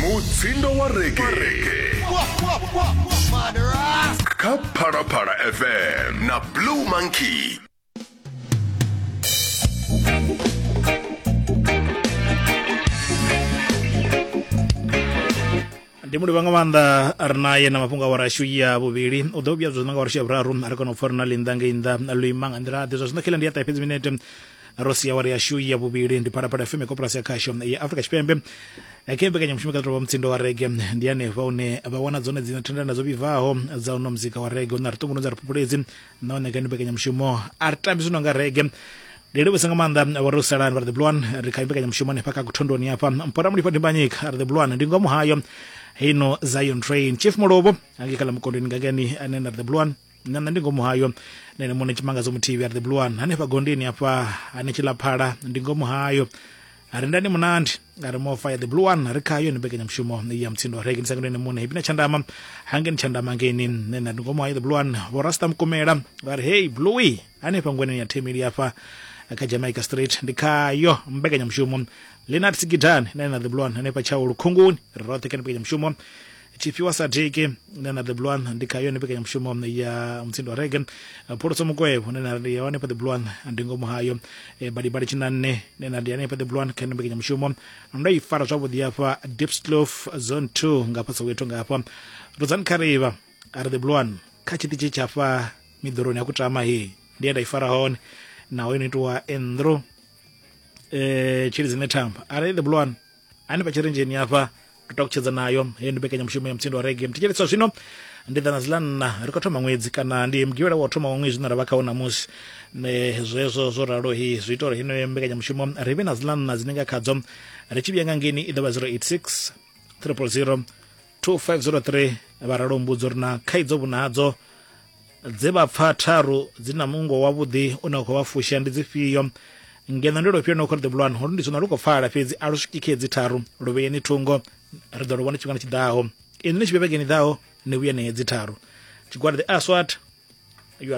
mutsindo wa reggae kha phalaphala fm na blue monkey ndi mulivha nga maanḓa ri naye na mafhungo a warashu ya vhuvhili u ḓo vhuya zwo zwi nga warashu ya vhuraru a ri kona u pfa ri na linḓa ngei nnḓa luima nga nḓila ḓe zwa zwino khela ndi ya ṱahe fhedzi minete ro sia awara yashu ya vhuvhili ndi phalaphala fm koporasi ya khasho ya afrika tshipembe khe mbekanyamushumo kha ṱolwa mutsindo wa rege ndi hanefha hune vha wana dzone dzine thendelano dzo vhibvaho dza uno muzika wa rege hune ri ṱungunu dza ri phuphuledzi nahone kha ndi mbekanyamushumo a ri tambi zwino nga rege ndi livhusa nga maanḓa vha ro salani vha ri the blue one ri kha mbekanyamushumo hanefha kha kuthondoni hafha mpora mulifha ndimbanyika ri the blue one ndi ngomu hayo hino zion train chief mulovho angekhala mukondweni ngakani ane na ri the blue one na nṋe ndi ngomu hayo na ene muṋe tshimangadzo muthihi are the blue one hanefha gondeni hafha hane tshila phala ndi ngomu hayo ari ndani munandi ari mo fire the blue one ri khayo ni bekanya mushumo ya mtsindo rege ni sangene mune hipina tshandama hangeni tshandama ngeni ne na ngomo hayo the blue one vho rasta mukumela vha ri hey bluey hanefha ngweneni ya themili hafha kha jamaica street ndi khayo mbekanya mushumo lenat sigidani na na the blue one hanefha tshaulu khunguni ri roṱhe kha ni bekanya mushumo tshifhiwa sa deke na na the blue one ndi kha yone mbekanyamushumo ya mutsindo wa rege phuluso mukwevho ne na ndi ya hanefha the blue one ndi ngomu hayo eh, badibadi tshinanne ne na ndi hanefha the blue one kha yone mbekanyamushumo ndo i fara zwavhuḓi hafha dipslof zone 2 nga hafha soweto nga hafha rudzani kharivha a ri the blue one kha tshiṱitshi tshafha miḓoroni ya kutama he ndi ye nda i fara hone naho yo no itiwa endro eh, tshilidzi ne thamba a ri the blue one hani vhatshirenzheni hafha ri takutshedza nayo heyo ndi mbekanyamushumo ya mutsindo wa rege mthetsheleswa zwino ndi ḓana zila nna ri khou thoma ṅwedzi kana ndi mugivhela wa u thoma wa ṅwedzi zwine ra vha khawo namusi zwezwo zwo ralo hi zwi ita uri heneyo mbekanyamushumo ri vhe na zila nna dzine nga khadzo ri tshi vhuya nga ngeni i ḓo vha 086 triple 0 2503 vha ralo mbudzo ri na khaidzo vhunadzo dze vha pfa tharu dzi na mungo wavhuḓi u ne khou vha fusha ndi dzifhio ngeno ndi lofhio no khou ri ḓivhulwana uri ndi zwino lu khou pfala fhedzi a lu swiki khe dzi tharu lu vheyeni thungo ri ḓo lu vhona tshifhingani tshiḓaho ini ni tshivhevhekeni ḓaho ni vhuyene hedzi tharu tshigwada the aswat